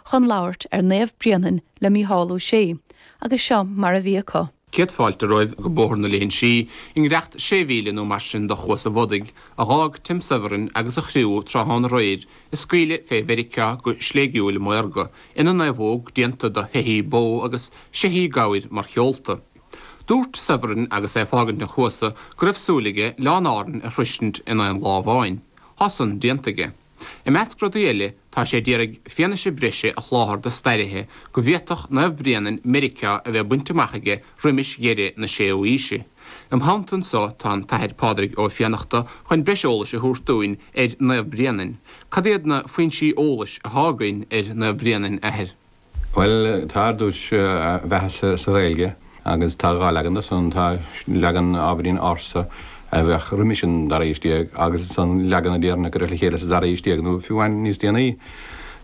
chun labhairt ar Naomh Bréanainn le Mícheál Ó Sé agus seo mar a bhí acu. Céad fáilte romhaibh go Bóthar na Léinsí i ngiorracht sé mhíle nó mar sin do Chuas an Bhodaigh a dh'fhág Tim Severin agus a chriú tráthnóna aréir is scaoileadh fé Mheiriceá go sléigiúil maorga ina naomhóg déanta do sheithí bó agus seithí gabhair mar sheolta. Dúirt Severin agus é ag fágaint an Chuasa go raibh súil aige Oileáin Árann a shroisint in aon lá amháin. Thá san déanta aige. I measc rudaí eile, tá sé d'iarraidh fianaise breise a sholáthar do stairithe go bhféadfadh Naomh Bréanainn Meiriceá a bheith bainte amach aige roimis dheireadh na 6ú aoise. Im theannta anso tá an tAthair Pádraig Ó Fiannachta chun breis eolais a thabhairt dúinn ar Naomh Bréanainn. Cad iad na foinsí eolais athá againn ar Naomh Bréanainn, Athair? Bhuel, tá ar dtús a bheatha sa Ghaeilge agus tá dhá leagan de san, tá leagan ábhairín ársa a bheadh roimis an dara haois déag agus ansan leagan a déarfainn a cuireadh le chéile sa dara haois déag nó fiú amháin níos déanaí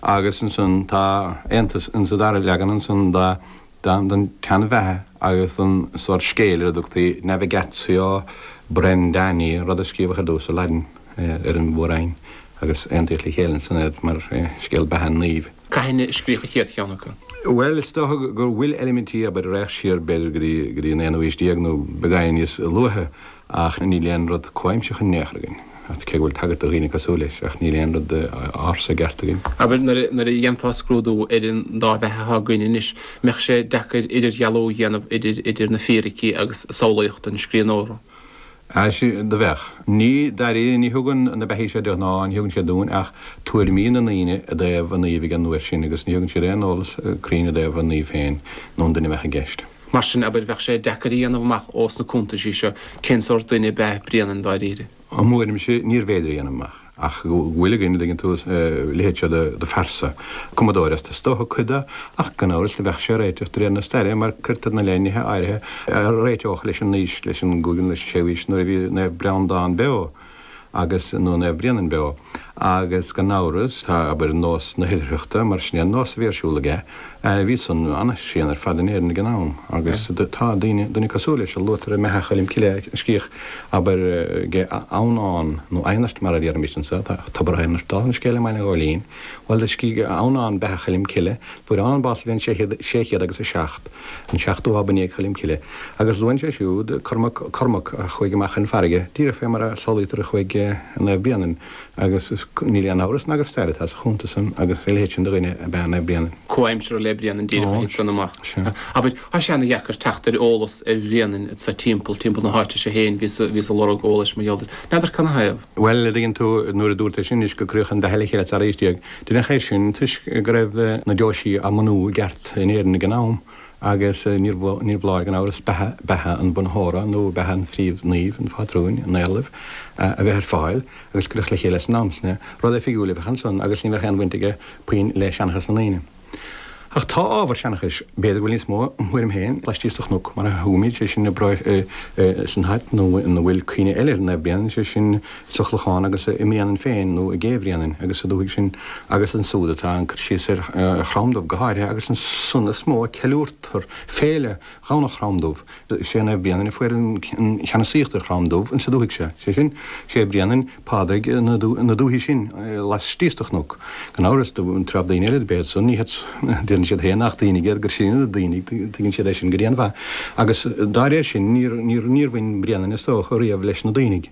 agus ansan tá aontas insa dara leagan san don tseanbheatha agus don sórt scéil ar a dtugtaí Navigatio Brendani, rud a scríobhadh ar dtús i Laidin ar an Mhór-Roinn agus aontaíodh le chéile ansan iad mar scéal beatha an naoimh. Cathain a scríobhadh an chéad cheann acu. Bhuel, is dócha go bhfuil eilimintí abair a raghadh siar b'fhéidir go dtí an aonú aois déag nó beagáinín níos luaithe ach níl aon rud comhaimseach in aon chor againn, cé go bhfuil tagairt do dhaoine cosúil leis, ach níl aon rud ársa i gceart againn. Abair nuair a dhéanfá scrúdú ar an dá bheatha atá againn anois, an mbeadh sé deacair idirdhealú a dhéanamh idir na fíricí agus samhlaíocht an scríbhneora? Ach do bheadh. Ní, dáiríre, ní thugann na beathaí seo de ghnáth, ní thugann siad dúinn ach tuairimí na ndaoine i dtaobh an naoimh ag an uair sin agus ní thugann siad aon eolas cruinn i dtaobh an naoimh féin nó an duine a bheadh i gceist. Mar sin, abair, bheadh sé deacair a dhéanamh amach ós na cuntaisí seo cén sórt duine ab ea Bréanainn dáiríre. I mo thuairimse, níorbh fhéidir a dhéanamh amach. ach go bhfuil againn, an dtuigeann tú, a leithéid seo de phearsa. Cumadóireacht is dócha cuid de, ach gan amhras do bheadh sé ag réiteach de réir na staire mar cuirtear ina leith nithe áirithe a réiteodh leis an aois, leis an gcúigiú nó leis an séú aois nuair a bhí Naomh Breandán beo agus, nó Naomh Bréanainn beo. Agus gan amhras tá, abair, nós na hoilithreachta mar sin é an nós a bhí ar siúl aige. Bhí san an-tréan ar fad in Éirinn ag an am agus tá daoine, duine cosúil leis a luaitear i mbeatha Choilm Cille, a scríobhadh, abair, ag Adhamhnán, nó aonairt mar a déarfaimid anseo, tá tobar aonairt dála an scéil i mBaile an Ghóilín, bhuel do scríobh Adhamhnán beatha Choilm Cille, fuair Adhamhnán bás sa bhliain sé chéad, sé chéad agus a seacht, an seachtú ab i ndiaidh Choilm Cille. Agus luann sé siúd Cormac, Cormac a chuaigh amach chun farraige, díreach fé mar a samhlaítear a chuaigh Naomh Bréanainn. Agus níl aon amhras ná gur stair atá sa chuntas sin agus a leithéid sin de dhuine ab ea Naomh Bréanainn. Comhaimseartha le Bréanainn díreach a thit san amach. Abair, tá sé ana dheacair teacht ar eolas ar Bhréanainn sa timpeall, timpeall na háite seo féin, bhíos ag lorg eolais mar gheall air. N'fheadar cad 'na thaobh? Bhuel, an dtuigeann tú, nuair a dúrtsa anois gur cuireadh an bheatha le chéile sa dara haois déag, deineadh é sin toisc go raibh na deoisí á mbunú i gceart in Éirinn ag an am, Agus níorbh fholáir gan amhras beatha an bhunaitheora nó beatha an phríomhnaoimh, an phátrúin, an éarlaimh a bheith ar fáil agus cuireadh le chéile san am sin rud oifigiúil a bheadh ansan agus ní bheadh aon bhaint aige puinn le seanchas na ndaoine. Ach tá ábhar seanchais, b'fhéidir go bhfuil níos mó, im thuairim féin, laistíos de chnoc mar a thugaimid, sé sin, i bproinn, san áit ina bhfuil cuimhne eile ar Naomh Bréanainn, sé sin, sa Chlochán agus i mBréanainn féin nó i gCé Bhréanainn agus sa dúthaigh sin agus ansúd atá an cur síos ar Chrom Dubh go háirithe agus ansan is mó a ceiliúrtar féile Dhomhnach Chrom Dubh. Is é Naomh Bréanainn a fuair an cheannasaíocht ar Chrom Dubh insa dúthaigh seo, sé sin, sé Bréanainn Pádraig na dúthaí sin laistíos de Chnoc, gan amhras, do treabh daoine eile ab ea san, ní hiad san, deireann siad féin nach Duibhnigh iad, gur sinne na Duibhnigh, tuigeann siad é sin go dian-mhaith, agus dá réir sin níor bhain Bréanainn is dócha riamh leis na Duibhnigh.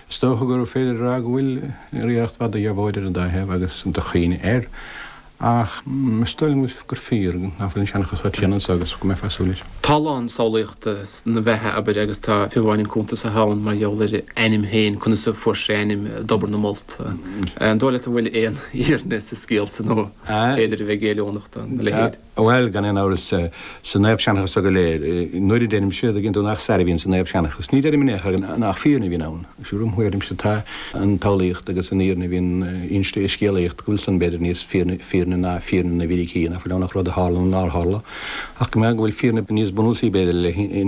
Is dócha gur féidir a rá go bhfuil iarracht mhaith de dheabhóid ar an dá thaobh agus de chuimhne air, ach is dóigh liom gur fíor nach bhfuil an seanchas chomh tréan anseo agus go mbeifeá ag súil leis. Tá a lán samhlaíochta ina bheatha, abair, agus tá fiú amháin an cuntas a thugann mar gheall ar a ainm féin, conas a fuair sé a ainm i dTobar na Molt. An dóigh leat an bhfuil aon fhírinne sa scéal san nó an féidir a bheith géilliúnach dá leithéid? Bhuel, gan aon amhras, sa naomhsheanchas so go léir, nuair a deirimse, an dtuigeann tú, nach stair a bhíonn sa naomhsheanchas. Ní deirim in aon chor nach fírinne a bhíonn ann. Mar im thuairimse, tá an tsamhlaíocht agus an fhírinne a bhíonn inste i scéalaíocht, go bhfuil san, b'fhéidir, níos fírinne ná fírinne na bhfíricí, nach bhfuil ann ach rud a tharla nó nár tharla, ach go mbeadh, go bhfuil fírinne níos bunúsaí, b'fhéidir, i leith.